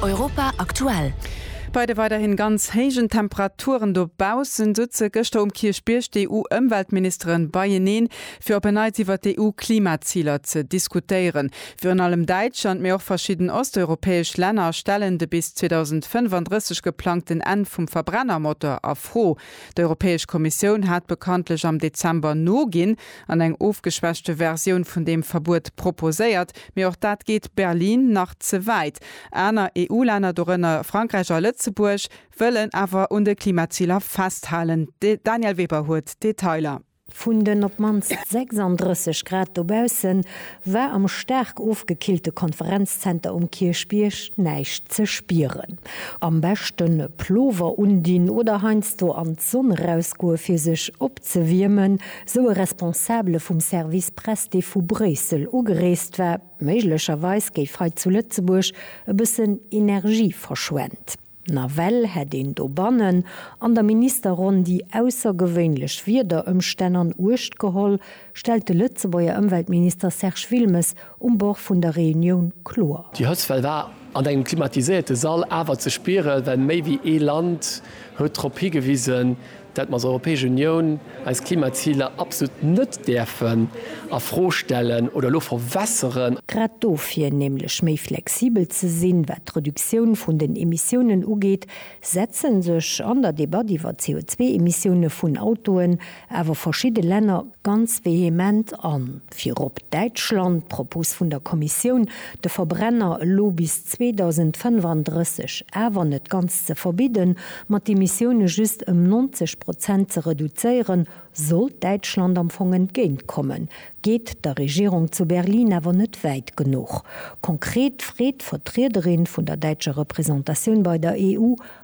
Europa aktuell. Bei de weiderhin ganz héijen Temperaturen dobaussen, souze gëschter um Kierchbierg d'EU-Ëmweltministeren beieneen, fir op en Neits iwwert d'EU-Klimaziler ze diskutéieren. Virun allem Däitschland, mee och verschidden osteuropäesch Länner stellen de bis 2035 geplangten Enn vum Verbrennermotor a Fro. D'Europäesch Kommissioun hat bekanntlech am Dezember noginn an eng ofgeschwächte Versioun vun deem Verbuet proposéiert, mee och dat geet Berlin nach ze wäit. Aner EU-Länner, dorënner Frankräich a Lëtzebuerg, wëllen awer un de Klimaziler festhalen. De Daniel Weber huet d'Detailer. Vun den op d'mannst 36 Grad dobausse war am staark ofgekillte Konferenzzenter um Kierchbierg näischt ze spieren. Am beschte Plover undinn oder heiansdo an d'Sonn erausgoe fir sech opzewiermen, sou e Responsabele vum Service Press, dee vu Bréissel ugereest war. Méiglecherweis géif hei zu Lëtzebuerg e bëssen Energie verschwent. Nawell hätt een dobannen an der Ministerronn déi aussergewéinlech Wiederëmstänn an Uecht geholl, stellt de Lëtzebuerger Ëmweltminister Serge Wilmes um Bord vun der Reunioun kloer. Déi Hëtztwell war an engem klimatiséierte Sall awer ze spieren, well méi wéi ee Land huet drop higewisen, datt mer als Europäesch Unioun eis Klimaziler absolut net däerfen a Fro stellen oder elo verwässeren. Grad dofir, nämlech méi flexibel ze sinn, wat d'Reduktioun vun den Emissiounen ugeet, setzen sech an der Debatt iwwer d'CO2-Emissioune vun Autoen awer verschidde Länner ganz vehement an. Virop Däitschland, d'Propos vun der Kommissioun, de Verbrenner elo bis 2035 awer net ganz ze verbidden, ma d'Emissioune just ëm 90 Prozent ze reduzéieren, sollt Däitschland am Fong entgéint kommen, geet der Regierung zu Berlin awer net wäit genuch. Konkret freet d'Vertriederin vun der däitscher Representatioun bei der EU,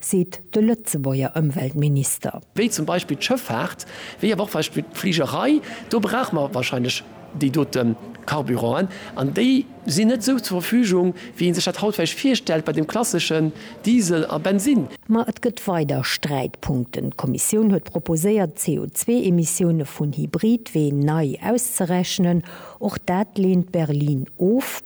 seet de Lëtzebuerger Ëmweltminister. Wéi zum Beispill d'Schëffaart, wéi awer och Beispill d'Fligerei, do brauche mer wahrscheinlech déi dote Carburanten. An déi sinn net esou zur Verfügung, wéi ee sech dat haut vläicht virstellt bei dem klasseschen Diesel a Bensinn. Ma et gëtt weider Sträitpunkten. D'Kommissioun huet proposéiert, d'CO2-Emissioune vun Hybridween nei auszerechnen. Och dat leent Berlin of.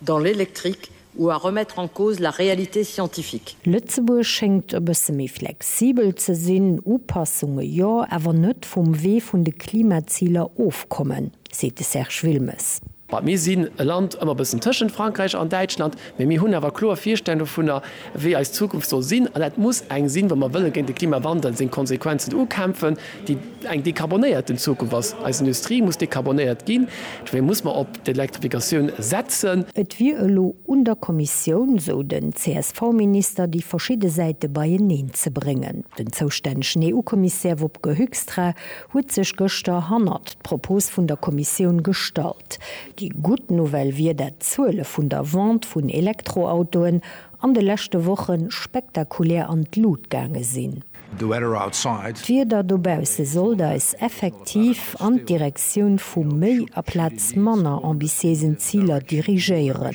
dans l'électrique ou à remettre en cause la réalité scientifique. Lëtzebuerg schéngt e bësse méi flexibel ze sinn, Upassunge jo, awer net vum Wee vun de Klimaziler ofkommen, seet de Serge Wilmes. Well mir sinn e Land ëmmer e bëssen tëschent Frankräich an Däitschland, mä mir hunn awer kloer Virstellungen dovunner, wéi eis Zukunft soll sinn. An dat muss eng sinn, wa mer wëlle géint de Klimawandel seng Konsequenzen ukämpfen. déi eng dekarbonéierten Zukunft ass, eis Industrie muss dekarbonéiert ginn, dofir muss mer op d'Elektrifikatioun setzen. Et wier elo un der Kommissioun, esou den CSV-Minister, déi verschidde Säite beieneen ze bréngen. Den zoustännegen EU-Kommissär Wopke Hoekstra huet sech gëschter hannert d'Propos vun der Kommissioun gestallt. Déi gutt Nouvelle wier, dat d'Zuele vun der Vente vun Elektroautoen an de leschte Woche spektakulär an d'Lut gaange sinn. The weather outside. D'Wieder dobausse sollt eis effektiv an d'Direktioun vu méi aplaz manner ambitiéisen Ziler dirigéieren,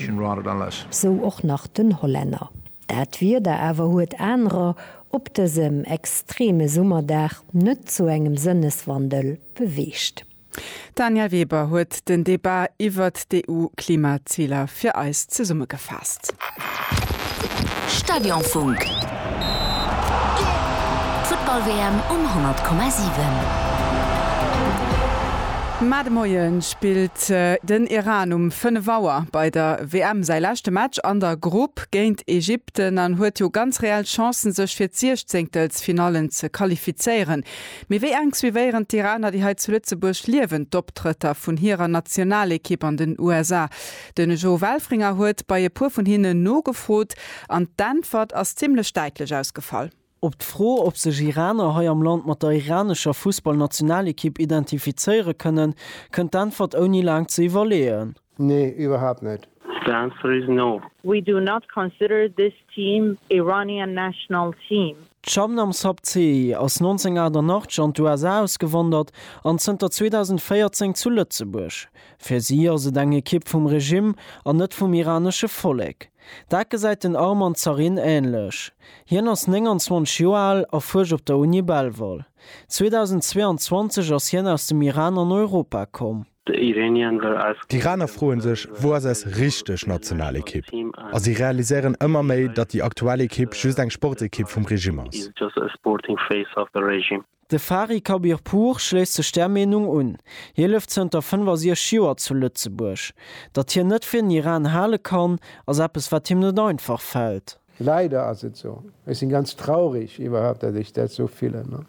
sou och nach den Hollänner. Dat Wieder awer huet anerer op dësem extreme Summerdag net zu engem Sënneswandel beweegt. D'Danièle Weber huet den Debat iwwert d'EU-Klimaziler fir eis zesummegefaasst. Stadionfunk, D'Futtball-WM um 100,7. Mä de Moie spillt den Iran um 5 Auer bei der WM säi leschte Match an der Grupp géint Ägypten an huet jo ganz reell Chancen, sech fir d'Siechzéngtelsfinallen ze qualifizéieren. Mee wéi enk suivéieren d'Iraner, déi hei zu Lëtzebuerg liewen, d'Optrëtter vun hirer Nationalekipp an den USA? Den Joe Welfringer huet bei e puer vun hinnen nogefrot an d'Äntwert ass zimmlech däitlech ausgefall. Op d'Fro, ob sech Iraner hei am Land mat der iranescher Fussballnationalekipp identifizéiere kënnen, kënnt d'Äntwert ouni laang ze iwwerleeën. Nee, iwwerhaapt net. The answer is no. We do not consider this team Iranian national team. D'Shabnam Sabzehi ass 1988 an d'USA ausgewandert an zënter 2014 zu Lëtzebuerg. Fir si ass et eng Ekipp vum Regimm an net vum iranesche Vollek. Dat gesäit den Arman Zarin änlech. Hien ass 29 Joer al a fuerscht op der Uni Belval. 2022 ass hien aus dem Iran an Europa komm. The Iranian were asking. D'Iraner froen sech, Wou ass eis richteg national Ekipp? A si realiséieren ëmmer méi, datt déi aktuell Ekipp just eng Sportekipp vum Regime ass. De Fari Khabirpour schléisst sech där Meenung un. Hie lëft zënter 65 Joer zu Lëtzebuerg. Datt hien net fir den Iran hale kann, ass eppes wat him net einfach fält. Leider ass et sou. Ech sinn ganz traurig iwwerhaupt dat ech dat sou fillen an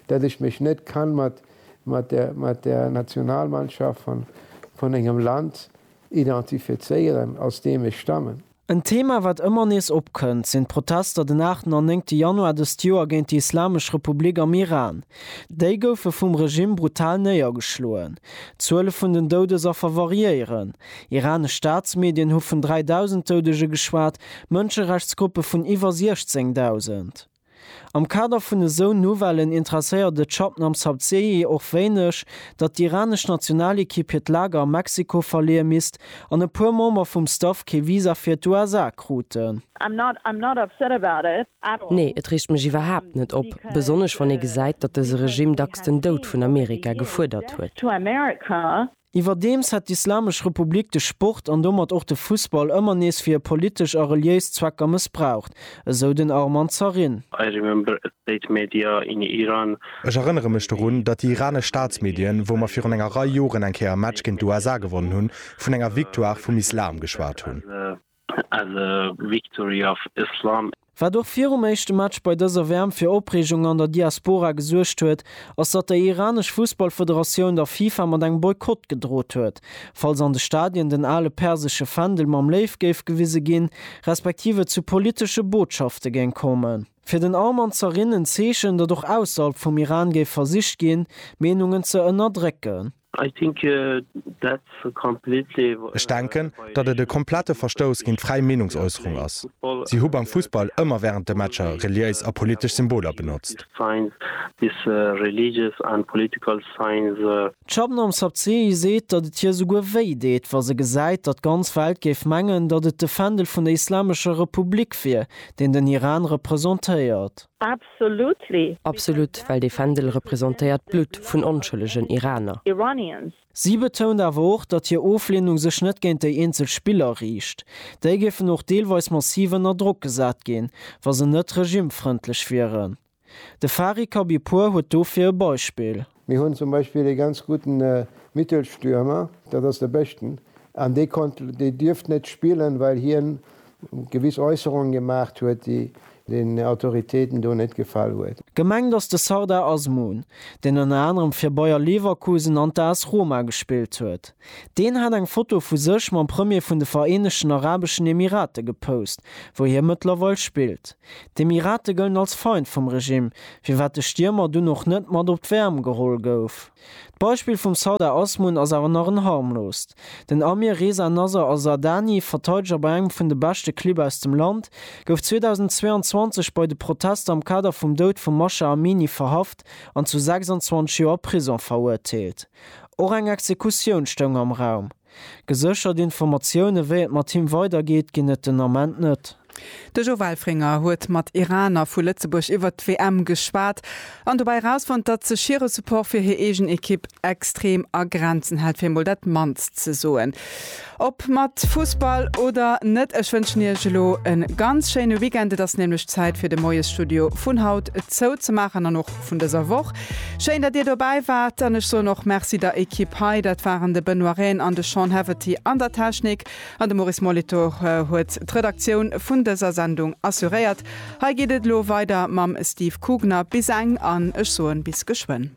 dat ech mech net kann mat mat der Nationalmannschaft van van engem Land identifizéieren aus deem ech stammen. En Thema wat ëmmer nees opkënnt, sinn d'Protester den aachten an néngte Januar dëst Joer géint déi Islamesch Republik am Iran. Déi goufe vum Regimm brutal néiergeschloen. D'Zuele vun den Doudesaffer variéieren. Iranesch Staatsmedien hu vun 3.000 Doudege geschwat, Mënscherechtsgruppe vun iwwer 16.000. Am Kader vun esou Nouvellen interesséiert et Shabnam Sabzehi och wéineg, datt d'iranesch Nationalekipp hiert Lager a Mexiko verleeë misst an e puer Member vum Staff kee Visa fir d'USA kruten. Nee, et reegt mech iwwerhaapt net op, besonnesch wann ee gesäit, datt dëse Regime dacks den Doud vun Amerika gefuerdert huet. Iwwerdeems hätt d'Islamesch Republik de Sport an domat och de Fussball ëmmer nees fir hir politesch a reliéis Zwecker mëssbraucht, esou den Arman Zarin. I remember a state media in Iran. Ech erënnere mech dorun, datt déi iranesch Staatsmedien, wou mer virun enger Rei Joren eng Kéier e Match géint d'USA gewonnen hunn, vun enger Victoire vum Islam geschwat hunn. as a victory of Islam. Wat och virum éischte Match bei dëser WM fir Opreegung an der Diaspora gesuergt huet, ass datt déi iranesch Fussballfederatioun der FIFA mat engem Boykott gedrot huet, falls an de Stadien den ale persesche Fändel mam Léiw géif gewise ginn, respektiv et zu politesche Botschafte géing kommen. Fir den Arm an z'erinn, en Zeechen, datt och ausserhalb vum Iran géif versicht ginn, Meenungen ze ënnerdrécken. I think that's a completely. Ech denken, datt et e komplette Verstouss géint d'fräi Meenungsäusserung ass. Si hu beim Fussball ëmmer wärend de Matcher reliéis a politesch Symboler benotzt. D'Shabnam Sabzehi seet, datt et hir souguer wéi deet, wa se gesäit, datt d'ganz Welt géif mengen, datt et de Fändel vun der Islamescher Republik wier, deen den Iran representéiert. Absolut, well dee Fändel representéiert d'Blutt vun onschëllegen Iraner. Si betount awer och, datt hir Ofleenung sech net géint déi eenzel Spiller riicht. Déi géifen och deelweis massiv ënner Drock gesat ginn, wa se net regimefrëndlech wieren. De Fari Khabibpour huet dofir e Beispill. Mir hunn zum Beispill ee ganz gudden Mittelstürmer, dat ass de Beschten, an dee konnt, dee dierft net spillen, well hien gewiss Äusserungen gemaacht huet, déi den Autoritéiten do net gefall huet. Gemengt ass de Sardar Azmoun, deen ënner anerem fir Bayer Leverkusen an d'AS Roma gespillt huet. Deen hat eng Foto vu sech mam Premier vun de Vereenegten Arabeschen Emirate gepost, wou hie mëttlerweil spillt. D'Emirate gëllen als Feind vum Regimm, firwat de Stiermer dunn och net mat op d'WM geholl gouf. D'Beispill vum Sardar Azmoun ass awer nach en harmloost. Den Amir Reza Nasr Azardani, Verteideger bei engem vun de beschte Clibb aus dem Land, gouf 2022 bei de Protester am Kader vum Doud vum Masha Amini verhaft an zu 26 Joer Prisong verurteelt. Och eng Exekutioun stoung am Raum. Geséchert Informatioune wéi et mat him weider geet, ginn et den Ament net. De Jo Welfringer huet mat Iraner vu Lëtzebuerg iwwert d'WM geschwat an dobäi erausfonnt, datt sech hire Support fir hir eegen Ekipp extrem a Grenzen hält, fir emol dat mannst ze soen. Ob mat Fussball oder net, ech wënschen Iech elo e ganz schéine Weekend. Et ass nämlech Zäit fir de Moiesstudio vun haut zou ze maachen an och vun dëser Woch. Schéin, datt Dir dobäi waart an ech soen och Merci der Ekipp hei. Dat waren de Benoît Rehn an de Sean Haverty an der Technik an de Maurice Molitor huet d'Redaktioun vun dëser Sendung assuréiert. Hei geet et elo weider mam Steve Kugner. Bis eng an ech soen bis geschwënn.